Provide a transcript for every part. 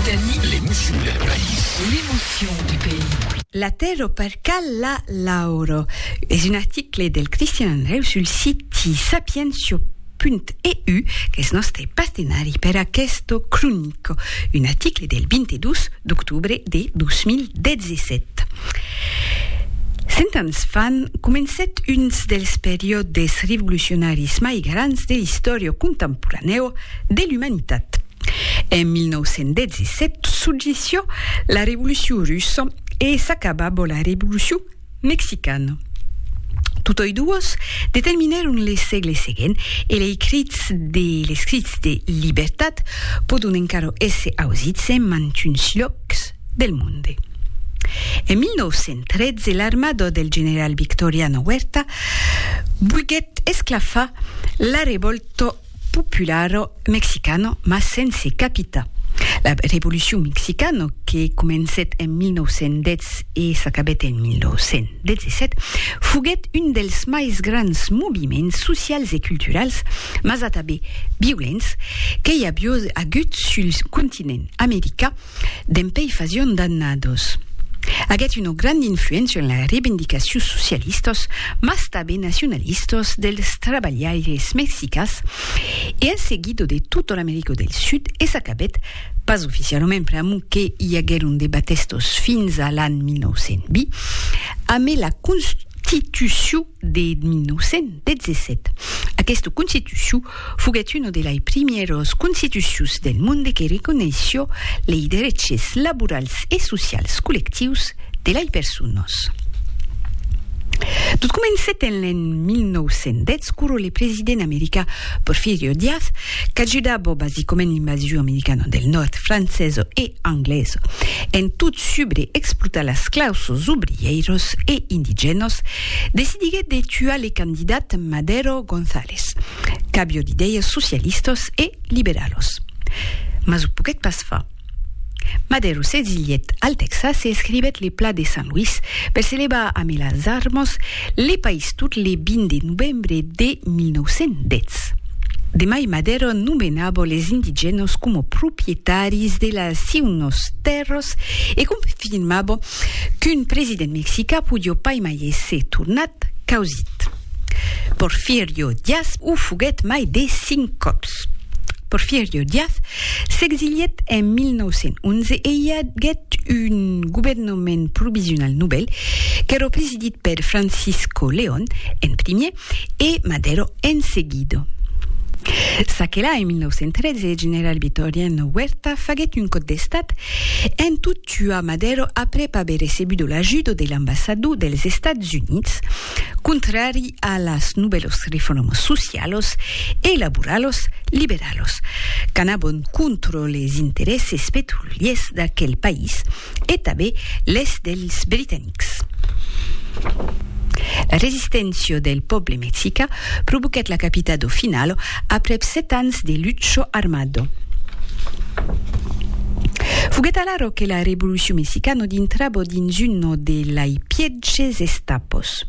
Teni. L'emocion del país. L'emocion du país. La tèrra per cal la lauro. Es un article del Cristian Andreu sul siti sapientia.eu, qu'es nòste partenari per aqueste cronico, un article del 22 d'octobre de 2017. Cent ans fan, comencèt uns dels periòdes revolucionaris mai grands de l'istòria contemporanèu de l'umanitat. En 1917 successió la Revolucion Russa e s'acaba bo la Revolucion Mexicana. Totòi duos determinèron le sègle seguent e lei crits de les crits de libertat pòdon encara èsser ausits en mantuns lhòcs del monde. En 1913 l'armada del general Victoriano Huerta volguèt esclafar la revòlta popularo mexicano mas sense capita. La revolucion mexicano que comencèt en 1910 e s'acabèt en 1917 foguèt un dels mais grands moviments socials e culturals, mas atabé violents, que i avió agut sul continent americà, Dempèi fasion d'annados, aguèt una granda influéncia en las revendicacions socialistas, mas tanben nacionalistas dels trabalhaires mexicans e en seguida de tota l'America del Sud e s'acabèt, pas oficialament pr'amor que i aguèron de batèstas fins a l'an 1920, amé la constitucion de 1917. Aquesta constitucion foguèt una de lei primièras constitucions del monde que reconeishió lei dereches laborals e socials collectius de lei personas. Tot comencèt en l'an 1910 quora le president americà Porfirio Diaz, qu'ajudava basicament l'invasion americana del nòrd francesa e anglesa en tot subre explotar las clausas obrièiras e indigènas Decidiguèt de tuar le candidat Madero González, qu'avió d'idèias socialistas e liberalas. Mas o poguèt pas far. Madero s'exilièt al Tèxas e escrivèt le Pla de San Luis per se levar amé las armas le país tot le 20 de novembre de 1910. Demai Madero nomenava les indigènas coma proprietaris de las siunas tèrras e confirmava Qu'un president mexicà podió pas mai èsser tornat causit. Porfirio Diaz o foguèt mai de cinc còps. Porfirio Diaz s'exilièt en 1911 e i aguèt un governament provisional novèl, qu'èra presidit per Francisco León en primièr e Madero en seguido. S'aquela en 1913 general Vitoriano Huerta faguèt un còp d'estat en tot tuar Madero aprèp aver recebudo l'ajudo de l'ambassador dels Estats Units, contrari a las novèlos reformas socialos e laboralos liberalos qu'anavan contra les interèsses petroliers d'aquel país, e tanben les dels britanics. La resisténcia del pòble mexica provoquèt la capita do Finalo aprèp sèt ans de lucho armado. Foguèt alara que la revolucion mexicano dintrabo dins uno de lai pièges estapos.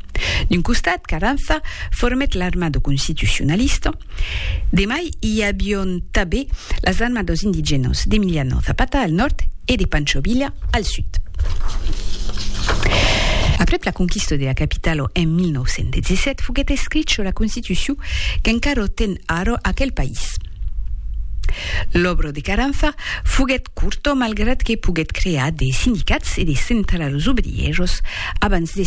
D'un costat, Carranza formèt l'armado constitucionalista, De mai i avion tabé las armas dos indigènos d'Emiliano Zapata al nòrd e de Pancho Villa al sud. Aprèp la conquista de la capitala en 1917 foguèt escrich sus la constitucion qu'encara ten ara aquel país. L'òbra de Caranfa foguèt corta malgrat que poguèt crear de sindicats e de centralas obrièras abans de